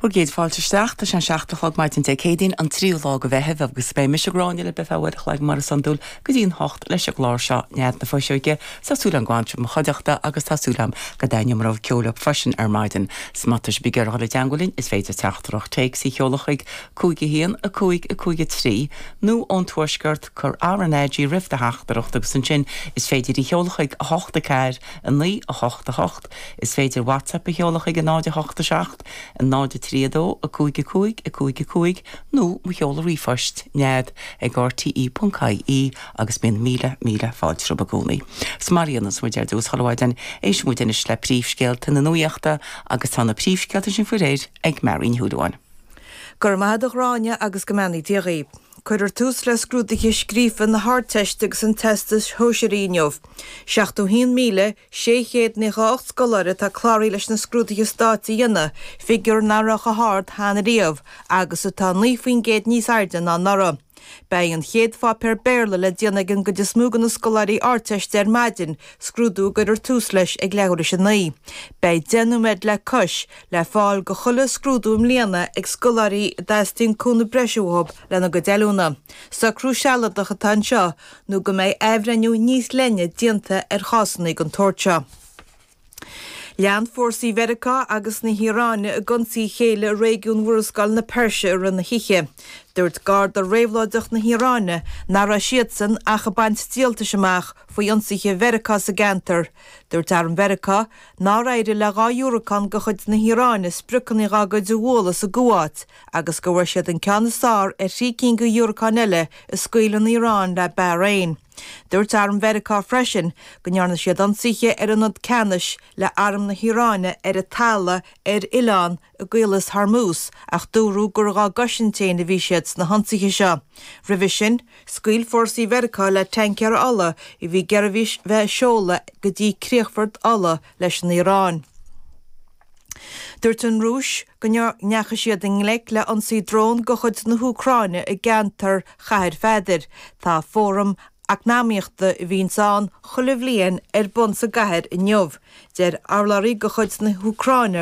Bhur gcéad fáilte isteach. Tá sé an seacht a chlog maidin Dé Céadaoin, an tríú lá de Mheitheamh, agus beidh mise, Gráinne, libh go ceann uair a chloig mar is iondúil go dtí an hocht leis an gclár seo, Nead na Fuiseoige, tá súil agam go bhfanfaidh sibh i mo chuideachta agus tá súil agam go dtaitneoidh mo rogha ceoil libh freisin ar maidin. Is má tá sibh ag iarraidh dul i dteangmháil linn is féidir teachtaireacht téacs a sheoladh chuig 5 1 5 5 3 nó ón Tuaisceart cuir RnaG roimh do theachtaireacht agus ansin is féidir í sheoladh chuig 8 4 9 8 8 Is féidir WhatsApp a sheoladh chuig 0 8 7 0 3 2 5 5 5 5 nó mo sheoladh ríomhphoist, nead ag rte.ie agus bíonn míle, míle fáilte rompu i gcónaí. So mar a dhéanas muid ar dtús, chuile mhaidin, éistfidh muid anois le príomhscéalta na nuachta agus tá na príomhscéalta sin faoi réir ag Máirín Ní Chudúin. Go raibh maith agat a Ghráinne agus go mbeannaí Dia dhaoibh. Cuirfear tús le scrúduithe scríofa na hArdteiste agus an Teastais Shóisearaigh inniu. 71,000. 600 nócha a hocht scoláire atá cláraithe leis na scrúduithe stáit a dhéanamh, figiúr nach raibh chomh hard cheana riamh agus atá 9 faoin gcéad níos airde ná anuraidh. Beidh an chéad pháipéar Béarla le déanamh ag an gcuid is mó de na scoláirí Ardteiste ar maidin, scrúdú a gcuirfear tús leis ag leathuair théis a naoi. Beidh deich nóiméad le cois le fáil do chuile scrúdú i mbliana ag scoláirí a dteastaíonn cúnamh breise uathu lena gcuid oiliúna. Socrú sealadach atá anseo nó go mbeidh athbhreithniú níos leithne déanta ar chásanna den tsórt seo. Lean fórsaí Mheiriceá agus na hIaráine ag ionsaí a chéile i réigiún Mhurascaill na Peirse i rith na hoíche. Dúirt Garda Réabhlóideach na hIaráine nach raibh siadsan ach ag baint díoltais amach faoi ionsaithe Mheiriceá sa gceantar. Dúirt Arm Mheiriceá nár éirigh le dhá dhiúracán de chuid na hIaráine spriocanna dá gcuid a bhualadh sa gCuáit, agus go bhfuair siad an ceann is fearr ar thrí cinn de dhiúracáin eile a scaoil an Iaráin le Bahrain. Dúirt arm Mheiriceá freisin go ndearna siad ionsaithe ar ionad ceannais le arm na hIaráine ar an talamh ar oileán i gCaolas Hormuz ach dúradh gur dhá gcosaint féin a bhí siad sna hionsaithe seo. Roimhe sin, scaoil fórsaí Mheiriceá le taincéir ola a bhí ag iarraidh bheith ag seoladh go dtí críochfort ola leis an Iaráin. Dúirt an Rúis go ndeachaigh siad i ngleic le ionsaí dróin de chuid na hÚcráine i gceantar Chathair Pheadair. Tá fóram eacnamaíochta a bhíonns ann chuile bhliain ar bun sa gcathair inniu. Deir urlabhraí de chuid na hÚcráine